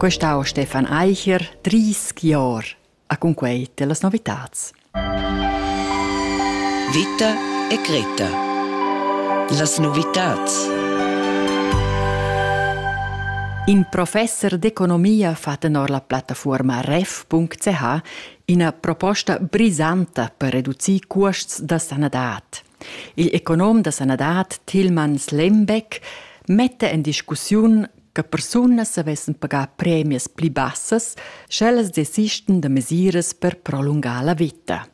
Quest ha Stefan Eicher 30 Jahre. A con quei te las novitats. Vita e Greta. Las novitats. In professor d'economia fatto nor la plattaforma ref.ch ina proposta brisanta per reducir cuosts da sanadad. Il econom da sanadad Tilman Slembeck metta en discussiun che persunas savessen pagar premias pli bassas, sch'ellas desistan da mesiras per prolungar la vita.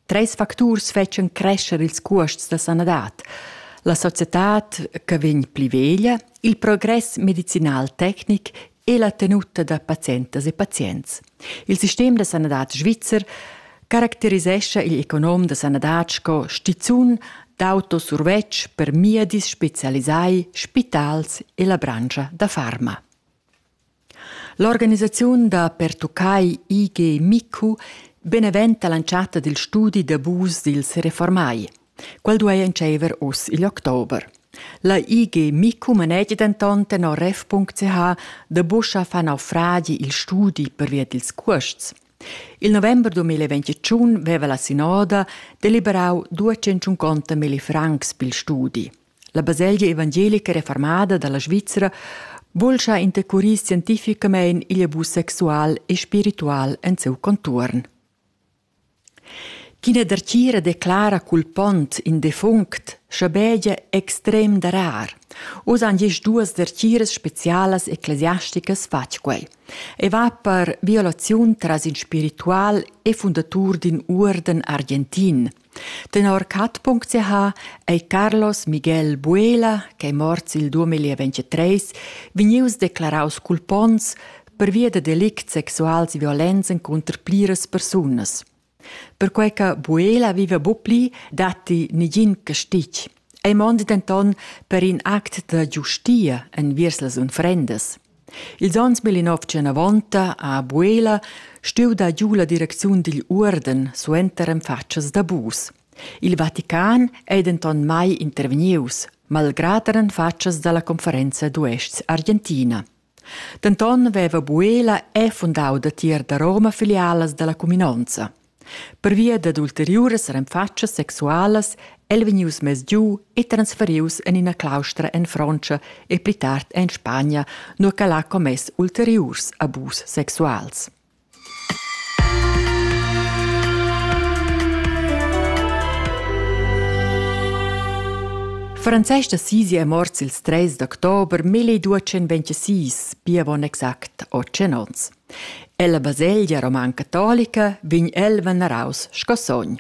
Treis facturs fetschan crescer ils cuosts da sanadad. La societad che vegn pli veglia, il progress medicinal tecnic e la tenuta da pazientas e pazients. Il sistem da sanadad svizzer caracterisescha il econom da sanadad sco stizun d'auto survetsch per miedis specialisai, spitals e la branscha da farma. L'organisaziun da pertuccai IG MICU beneventa l'entschatta dil studi d'abus dils reformai. Quel duei entscheiver uss igl october. La IG Micu manegi denton tenor ref.ch da buca far naufragi il studi pervia dils cuosts. Il november 2021 veva la sinoda deliberau 250 milli francs pil studi. La baselgia evangelica reformada dalla Svizra bulscha intercurir scientificamein igl abus sexual e spiritual en siu contuorn. Ch'ina dertgira declara cul pont in defunct schabegia extrem darar. Uss han gist duas dertgiras specialas ecclesiasticas fatg quei. Ei va per violaziun tras in spiritual e fundatur d'in uorden argentin. Tenor cat.ch ei Carlos Miguel Buela, ch'ei morts il 2023, vegnius declaraus cul pons, pervia da delicts sexuals violents encunter pliras persunas. Perquei che Buela viva bu pli, datti negin castig. Ei mondi denton per in act da giustia enviers las unfrendas. Ils onns 1990 a Buela stuiu dar giu la direcziun digl uorden suenter en fatschas da bus. Il Vatican ei denton mai intervegnius, malgrad er en fatschas dalla conferenza d'uests Argentina. Denton veva Buela è fundau datier da Roma filialas dalla cuminonza. Pervia dad ulteriuras renfatschas sexualas el vegnius mess giu e transferius en ina claustra en Frontscha e pli tard en Spagna, nua ch'el ha commess ulteriurs abus sexuals. Frances da Sisi è morts il 3 d'october 1226, pia bon exact 8 onns. Ella baselgia roman catolica vegn el veneraus sco sogn.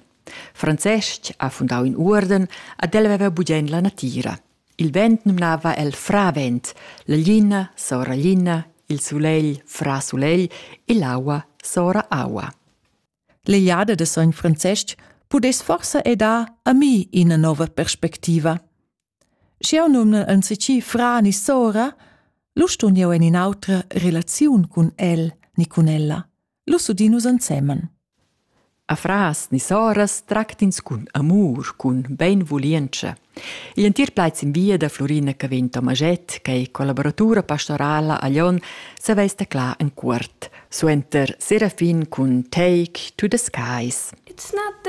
Francesc ha fundau in uorden ad el veva bugen la natira. Il vent numnava el fravent, la glina sora glina, il sulegl fra sulegl e l'aua sora aua. L'Eliade de sogn Francesc pudess forsa e dar a mi ina nova perspectiva. Sch'jau numna ansicì fra ni sora, lu stun jeu en in'autra relaziun cun el ni cun ella. Lu udin nus ensemen. A fras ni soras tractins cun amur, cun beinvulientscha. Igl entir plaid sin via da Florina Cavin Tomaget, che è collaboratura pastorala a Lyon, saveis teclar en cuort. Suenter Serafin cun Take to the Skies. It's not the